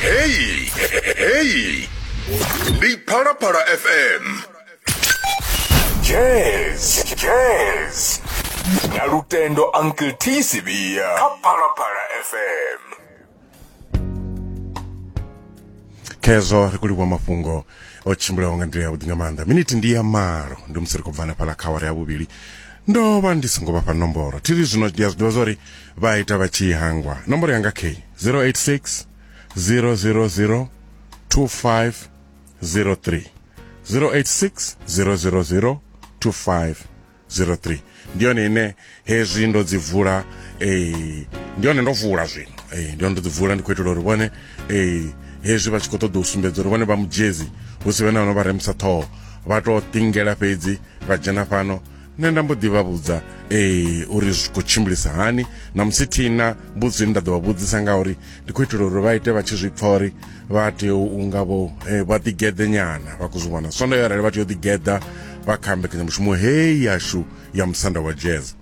Heyi, heyi. Ndi Phalaphala FM. Jazz, jazz. Na lutendo Uncle T Sibia. Kha Phalaphala FM. khezwo ri khou livhuwa mafhungo o tshimbulaho nga nḓila yavhuḓi nga maanḓa miniti ndi ya malo ndi musi ri khou bvana fhala kha awara ya vhuvhili ndo vha ndi songo vhafha nomboro thiri zwino ndi a zwi ḓivha zwa uri vha ita vha tshi hangwa nomboro yanga k 086 000 2503 086 000 2503 ndi yone ine hezwi ndo dzi vula eh, ndi yone ndo vula zwino eh, ndi yone ndo dzi vula ndi khou itela uri vhone eh, hezwi vha tshi khou ṱoḓa u sumbedza uri vhone vha mujezi hu si vhe na vhano vha remisa ṱhoho vha tou tingela fhedzi vha dzhena fhano nṋe nda mbo ḓi vha vhudza ee uri zwi khou tshimbilisa hani na musi thina mbudzo ine nda ḓo vha vhudzisa nga uri ndi khou itela uri vha ite vha tshi zwi pfa uri vha tea u nga vho eh, vha ḓigeḓe nyana vha khou zwi vhona sondo yo arali vha tea u ḓigeḓa vha kha mbekanyamushumo heyi yashu ya musanda wa jazz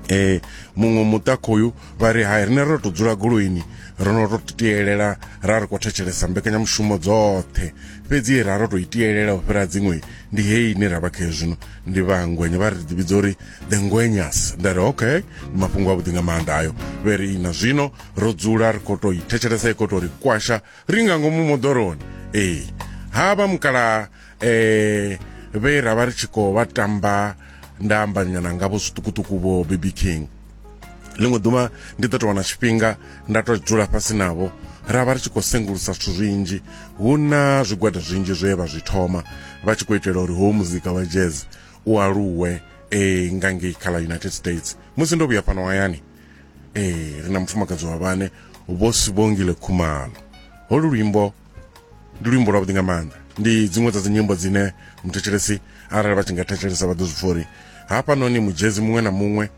eh muṅwe muṱa khoyu vha ri hai rine ro to dzula goloini ro no to tielela ra ri khou thetshelesa mbekanyamushumo dzoṱhe fhedzi ra ro to itielela u fhira dziṅwe ndi heyi ine ra vha khayo zwino ndi vha ngwenya vha ri ḓi vhidza uri the ngwenyas nda ri okay ndi mafhungo avhuḓi nga maanḓa ayo vhe ri na zwino ro dzula ri khou tou i thetshelesa i khou tou ri kwasha ri nga ngomu moḓoroni ee ha vha mukala eh vhe ra vha ri tshi khou vha tamba nda ambanyana ngavho zwiṱukuṱuku vho baby king ḽiṅwe ḓuvha ndi ḓo tou wana tshifhinga nda tou dzula fhasi navho ra vha ri tshi khou sengulusa zwithu zwinzhi hu na zwigwada zwinzhi zwe vha zwi thoma vha tshi khou itela uri howu muzika wa jazz u aluwe e nga ngei kha ḽa united states musi ndo vhuya fhano hayani e ri na mufumakadzi wa vhane vho sibongile khumalo holu luimbo ndi luimbo lwavhuḓi nga maanḓa ndi dziṅwe dza dzinyimbo dzine muthetshelesi arali vha tshi nga thetshelesa vha ḓo zwi pfha uri hafhanoni mujezi muṅwe na muṅwe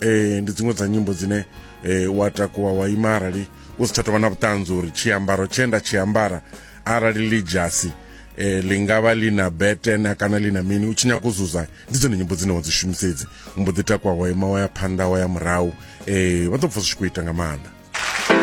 eh ndi dziṅwe dza nyimbo dzine eh wa takuwa wa ima arali u si tsha tovha na vhuṱanzi uri tshiambaro tshe nda tshi ambara arali ḽi dzhasi eh ḽi nga vha ḽi na betena kana ḽi na mini u tshi nyaka u zuza ndi dzone nyimbo dzine wa dzi shumisedzi u mbo ḓi takuwa wa ima wa ya phanḓa wa ya murahu eh vha ḓo pfa zwi tshi khou ita nga maanḓa